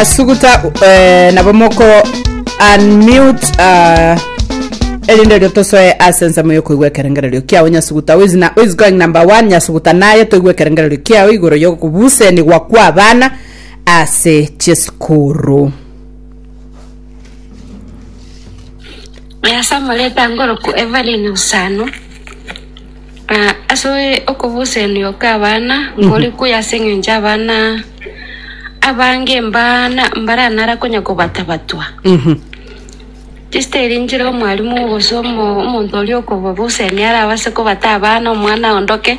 Asuguta eh, nabo moko unmute uh, erinde rio tosoe ase ensemo yokoigwa ekerengererio kiao nyasuguta who is, na, who is going number one nyasuguta naye toigwe ekerengererio kiao igoro yokobusenigwa kwa abana ase chisukuru Nyasamoreta ngoroku Evelyn Usano Na ase okobosenio kw'abana nkore kuya ase engencho abana abange mbana mbaranara konya kobatabatwa. Chisiteri nchire omwalimu gose omo- omonto oria okobabosenia arabase kobata abana omwana aondoke.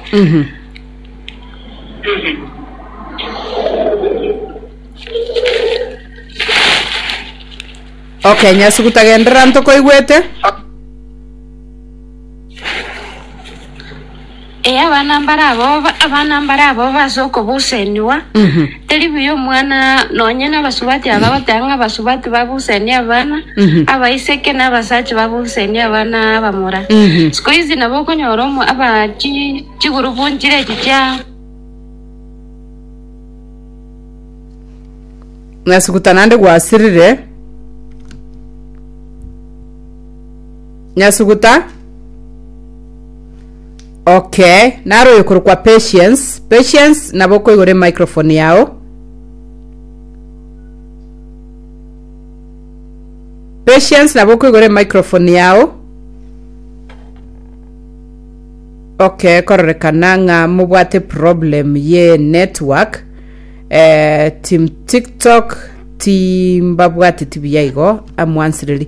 Okay, nyasuguta genderera ntokoigwete. Ee, abana mbare aboba, abana mbare aboba ase okobusenigwa, Mhm. teri buya omwana nonye nabasubati aba goteba ng'a abasubati babusenie abana, Mhm. abaiseke na abasacha babusenie abana abamura. Mhm. Siku hizi nabo okonyora omo aba chi chigurupu nchire echi chia Ng'asuguta naende gwasirire. Nyasuguta, okay, naro oyo korokwa Patience. Patience, nabo okoigora emicrophone yao. Patience, nabo okoigora emicrophone yao. Okay, kororekana ng'a mobwate problem ye network. Eh, team TikTok timbabwateti buya igo amwansireri.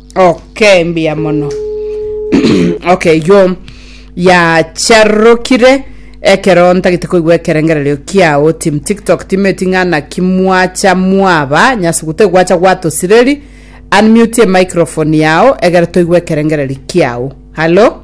Okay, mbuya mono. okay, yo yacharokire ekero ntagete koigwa ekerengererio kiao tim tiktok timeti ng'ana kimwacha mwaba nyase gute gwacha gwatosireri unmute microphone yao egere toigwe ekerengereri kiao hallo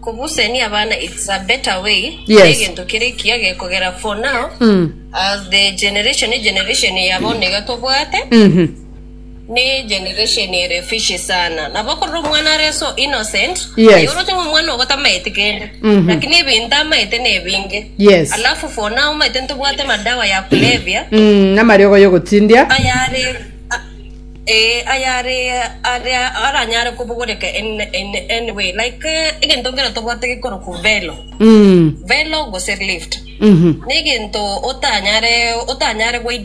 Kobusenia abana it's a better way Yes. negento kere ekiya gekogera for now as the generation ne generation ya bono iga tobwate Mhm. ne generation ere fishy sana nabo korora omwana are so innocent Yes. aye oroche ng'a omwana ogo tamaeti kende Mhm. lakini ebinto amaete na ebinge Yes. alafu for now omanyete ntobwate madawa ya kulevya Mm, namariogo yogotindia ayare ee, ayare aria aranyare kobogoreka in, in any way like eh, egento nkero tobwate gekorokwa velo Mm. velo gose lift Mhm. negento otanyare otanyare goide